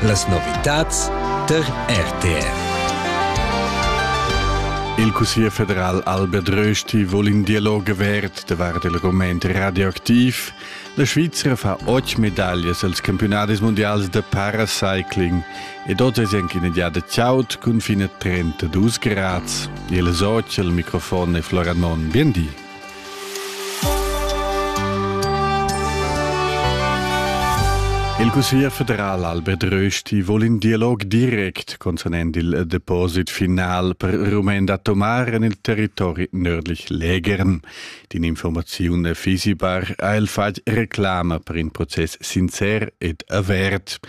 Las novitads tar RTR. Il Cussier federal Albert Rösti vul in Dialog avert davart il rument radioactiv. La Svizra fa otg medaglias als campionadis mundials da paracycling ed oz è anche in giada chaud cun fine 32 grads. Il soc al microfon è Flora Non. Bien di. Il Cussegl federal Albert Rösti vole in dialog direct concernend il Deposit final per Rumen da tomar en il territori nördlich Lägern. Die Information fisibar ha il fatg reclama per in proces sincer ed avert.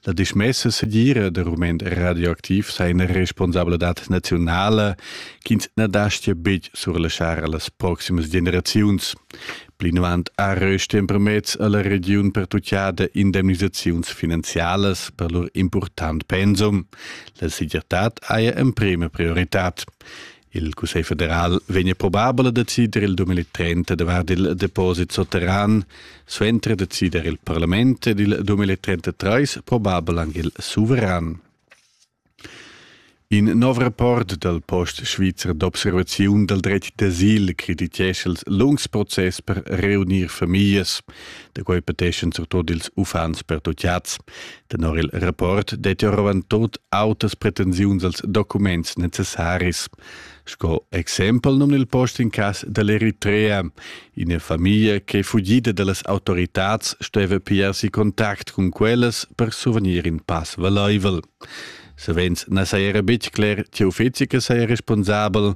La dismessa segira de Rumen radioaktiv sei eine Responsabilität nationale ch'ins na dastia betg surlaschar a las proximas generaziuns. Plinavant ha rösti empermezz a la regiun pertuchada indemnisaziuns finanzialas per lur important pensum. La segirtad haja emprema prioritad. Il Cussegl federal vegna probabel a decider il 2030 davart il deposit sotterran, suenter decider il parlament ed il 2033 probabel anche il suveran. In nov rapport dal post svizzer d'observaziun dal dretg d'asil creditescha els lungs process per reunir famiglias. Da quai peteschan surtut ils uffants pertutgads. Tenor il rapport dettia rovant tot autas pretensiuns als documents necessaris. Sco exempel nun il post in cas dell'Eritrea. Ina famiglia che è fugida dallas autoritads steva pia si contact cun quellas per suvenir in pass valaivel. Savens na saja betg cler tge uffizi che saja responsabel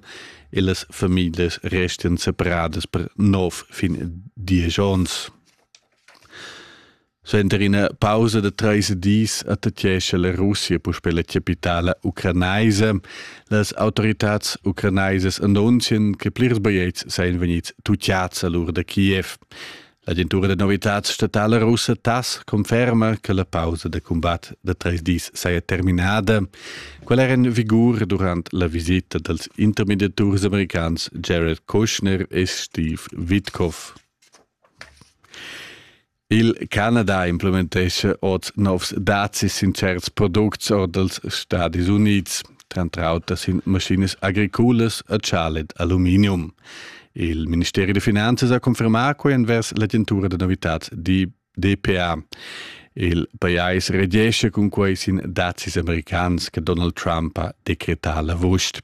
e las famiglas restian separadas per nov fin diesch onns. Suenter ina pausa da treis dis attacchescha la Russia puspè la capitala ucranaisa. Las autoritads ucranaisas annunzian che plirs bigliets sajan vegnids tutiads a l'ur da Kiev. L'agentura da novitads statala russa TASS conferma che la pausa da combat da treis dis saja terminada. Quella era en vigur durant la visita dals intermediaturs americans Jared Kushner e Steve Witkoff. Il Canada implementescha oz novs dazis sin certs products or dals Stadis Unids, tranter auter sin maschinas agriculas e chalet aluminium. Il Ministeri da Finanzas ha confermà quai envers l'agentura da novitads DPA. Il pajais regescha cun quai sin dazis americans che Donald Trump ha decretà l'avust.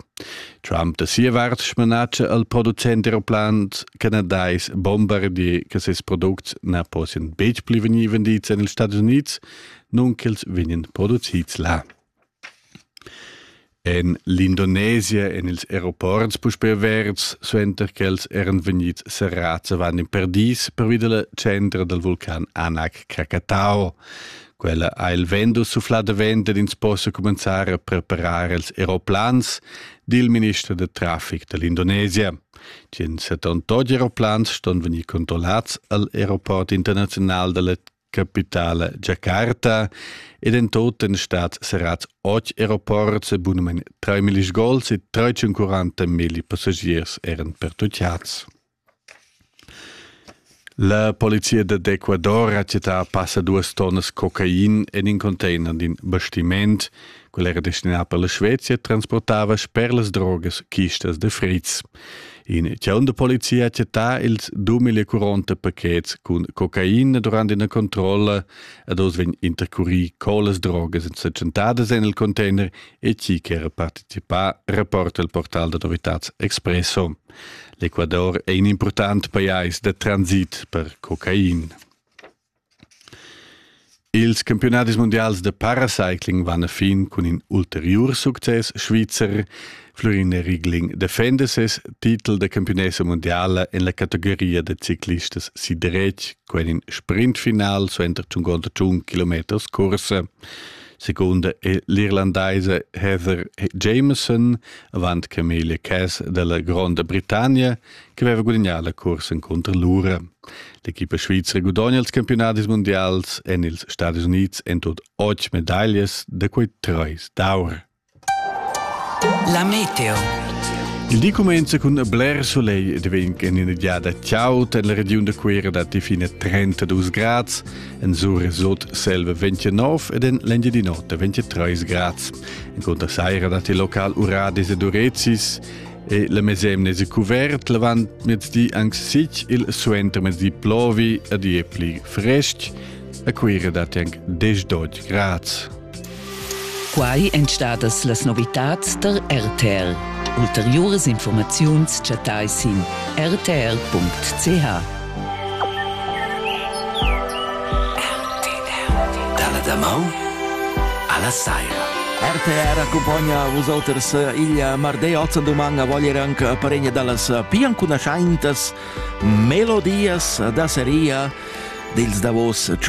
Trump da sia vart smanatscha al producent aeroplant canadais bombardier che ses products na possian betg pli vegnir vendids en ils Stati Unids, nun ch'els vegnan producids là. En l'Indonesia en ils aeroports puspè averts, suenter ch'els eran vegnids serrads avant in per dis pervi da la centra dal vulcan Anak Krakatau. Quella ha il vendo sufflà davent ed ins possa cumenzar a preparar els aeroplans, di il minister da traffic da l'Indonesia. Tien 78 aeroplans ston vegnir controllats al aeroport internaziunal dalla capitale Jakarta ed in tot en stat serrats 8 aeroports e bunamein 3.000 gols e 340.000 passagiers eran pertucciats. La polizia d'Ecuador ha chattà passa duas tonnas cocain en in container d'in bastiment. Quel era destinà per la Svezia e transportava sper las drogas chistas de fritz. In chaun de polizia ha chattà ils 2040 pachets cun cocain durant ina controlla ed oz vegn intercurì co las drogas èn setschentadas en il container e chi che era participà, reporta il portal d'autoritads Expresso. L'Ecuador è in impurtant pajais da transit per cocain. Ils campiunadis mundials de paracycling van a fin cun in ulteriur success svizzer. Florin Rigling defenda ses titel da campionessa mondiala en la categoria da ciclistas sidretg, quen in sprintfinal suenter tschungonda tschun kilometers corsa. Seconda è l'Irlandaise Heather Jameson avant Camelia Cass della Gronda Britannia che aveva gudagnà la cursa contro l'ura. L'equipa svizra gudogna ils campionadis mondials en ils Stati Unids en tut otg medaglias da quei treis d'aur. La meteo. Il di comincia con bler soleil ed vegn en ina giada ciao per la region da Cuera datti fine 32 grad, en Sur sot selva 29 ed en l'Engiadin'Ota 23 grad. En conta saira datti local uradis ed urezis e la mesemne è cuvert, l'avant mezdi anche sic, il suenter mezdi plovi ed è pli frestg. A Cuera datti anche 10 grad. Quai èn stadas las novitads tar RTR. Ulteriuras informaziuns chattai sin rtr.ch. Dalla damaun alla saira. RTR accumpagna vus oters il martedì 8 doman a vogliere anche paregna dallas più ancunascientas melodias da seria dils davos ciu